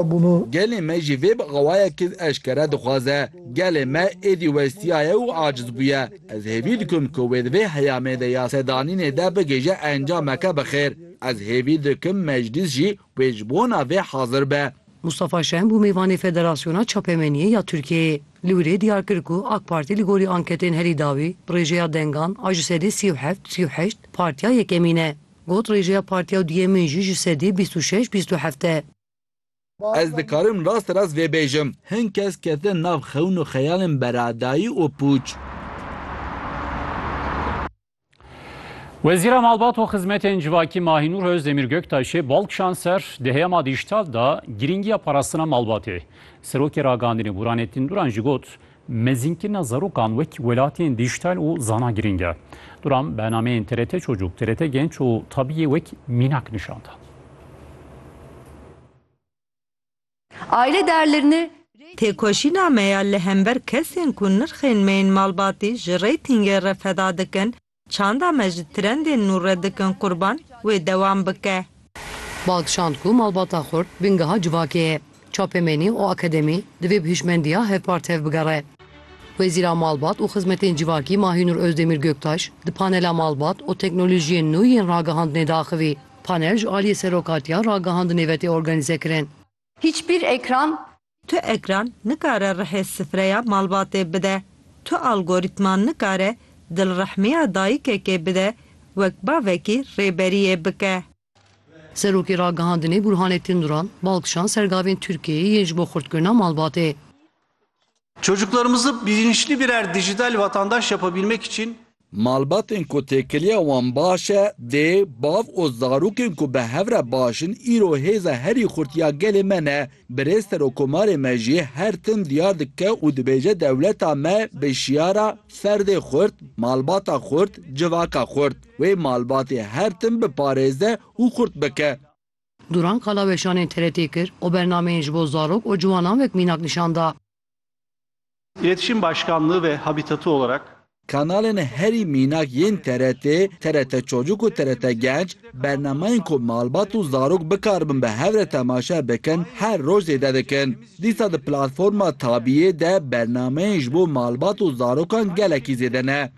Gelê me jî vê bi awayekî eşkere dixwaze. Gelê me êdî westiyaye û aciz bûye. Ez hêvî dikim ku wê di vê heyamê de ya sedanînê de bigihîje encameke bi xêr. Ez hêvî dikim meclîs jî wê ji bona vê hazir be. Mustafa Şen bû mêvanê Federasyona Çapemeniyê ya Tirkiyeyê. Li wir ê diyar kir ku AK Partî li gorî anketên herî dawî, bi rêjeya dengan a ji sedî sî û heft, sî û heşt, partiya yekemîn e. Got rêjeya partiya duyemîn jî ji sedî bîst û şeş, bîst û heft e. Ez dikarim rast rast vê bêjim. Hin kes ketin nav xewn û xeyalên beradayî û pûç. Wezîra Malbat û Xizmetên Civakî Mahînûr Ozdemîr Göktaşê bal kişand ser di heyama dîjîtal de girîngiya parastina malbatê. Serokê Ragandinê Burhanettin Duran jî got, Mezînkirina zarokan wek welatiyên dîjîtal û zana girîng e. Duran bernameyên TRT Çocuk, TRT Genç û Tabiyê wek mînak nîşan da. Aile değerlerini Têkoşîna me ya li hember kesên ku nirxên me yên malbatî ji reytingê re feda dikin, Çanda me ji trendên nû re dikin qurban, wê dewam bike. Ba kişand ku malbata Xurt bingeha civakê ye. Çapemenî û akademî divê bi hişmendiya hevpar tev bigere. Wezîra Malbat û Xizmetên Civakî Mahînûr Ozdemîr Göktaş di panela Malbat û teknolojiyên nû yên ragihandinê de axivî. Panel ji aliyê Serokatiya Ragihandinê ve tê organîzekirin. Hiçbir ekran. Tu ekran nikare rihê sifreya malbatê bide. Tu algoritma nikare dilrehmiya dayikekê bide wek bavekî rêberiyê bike. Serokê Ragihandinê Burhanettin Duran bal kişand ser gavên Tirkiyeyê yên ji bo xurtkirina malbatê. Çocuklarımızı bilinçli birer dijital vatandaş yapabilmek için Malbatên ku têkiliya wan baş e, dê, bav û zarokên ku bi hev re baş in îro hêza herî xurt ya gelê me ne. Birêz Serokomarê me jî her tim diyar dike û dibêje dewleta me bi şiyara Ferdê xurt, malbata xurt, civaka xurt, wê malbatê her tim biparêze û xurt bike. Duran qala weşanên TRT'ê kir û bernameyên ji bo zarok û ciwanan wek mînak nîşan da. İletişim Başkanlığı ve Habitatı olarak. Kanalên herî mînak yên TRT'ê, TRT Çocuk û TRT Genç, bernamayên ku malbat û zarok bikaribin bi hev re temaşe bikin her roj zêde dikin. Dîsa di platforma Tabî'ê de bernameyên ji bo malbat û zarokan gelekî zêde ne.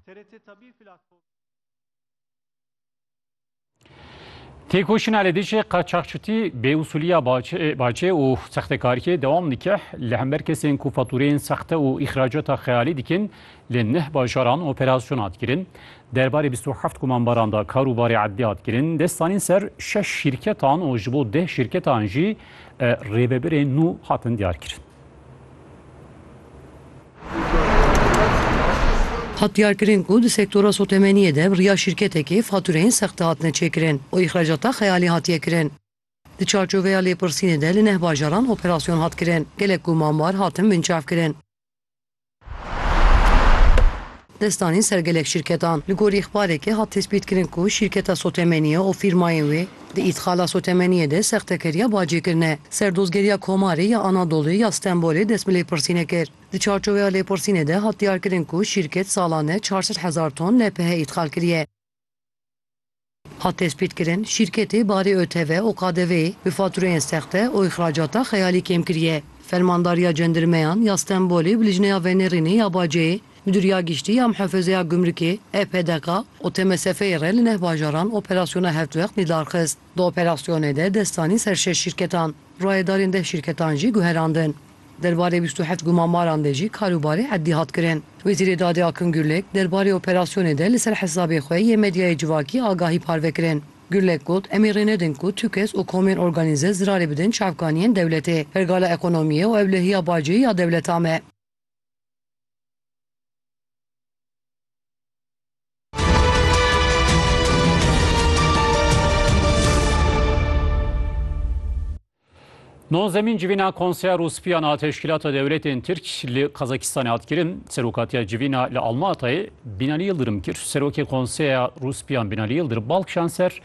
Têkoşîna li dijî qaçaxçitî, bêûsûliya bacê û sextekariyê dewam dike. Li hember kesên ku fatûreyên sexte û îxracata xeyalî dikin li neh bajaran operasyon hat kirin. Derbarê bîst û heft komanbaran de karûbarê edlî hat kirin. Dest danîn ser şeş şîrketan û ji bo deh şîrketan jî rêvebirên nû hatin diyarkirin. Hat diyarkirin ku di sektora sotemeniyê de bi riya şîrketekê fatureyên sexte hatine çêkirin û îxracata xeyalî hatiye kirin. Di çarçoveya lêpirsînê de li neh bajaran operasyon hat kirin, gelek ku mamar hatin binçavkirin. Destanî ser gelek şîrketan. Li gorî îxbarekê hat tespîtkirin ku şîrketa Sotemeniye û fîrmayên wê di îtxala Sotemeniyê de sextekeriya bacê kirine. Serdozgeriya Komarê ya Anadoluyê ya Stenbolê dest bi lêpirsînê kir. Di çarçoveya lêpirsînê de hat diyarkirin ku şîrket salane çar sed hezar ton LPH îtxal kiriye. Hat tespîtkirin, şîrketê barê ÖTV û KDV'ê bi fatureyên sexte û îxracata xeyalî kêm kiriye. Fermandariya Cendirmeyan ya Stenbolê bi lijneya venêrînê ya baceyê, Midûriya Giştî ya Muhefezeya Gumrikê, EPDK, û TMSF'ê re li neh bajaran operasyona hevtwext nîdar xist. Di operasyonê de dest danîn ser şeş şîrketan, rayedarên deh şîrketan jî guherandin. Derbarê bîst û heft gumanbaran de jî karûbarê erdî hat kirin. Wezîrê Dadê Akın Gürlek, derbarê operasyonê de li ser hesabê xwe yê medyayê civakî agahî parve kirin. Gürlek got, Em ê rê nedin ku tu kes û komên organîze zirarê bidin çavkaniyên dewletê, pergala ekonomiyê û ewlehiya bacê ya dewleta me. Nonzemîn civîna Konseya Rûspîyan a Teşkîlata Dewletên Tirk li Kazakistanê hat kirin. Serokatiya civîna li Almatayê Bînalî Yildirim kir. Serokê Konseya Rûspîyan Bînalî Yildirim bal kişan ser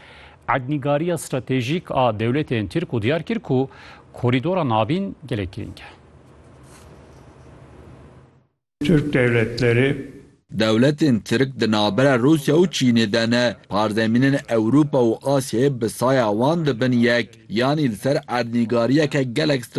ednîgariya stratejîk a dewletên Tirk û diyar kir ku korîdora navîn gelek girîng e. Tirk dewletlerê. Dewletên Tirk di navbera Rûsya û Çînê de ne. Parzemînên Ewropa û Asyayê bi saya wan dibin yek, yanî li ser erdnîgariyeke gelek stratejîk.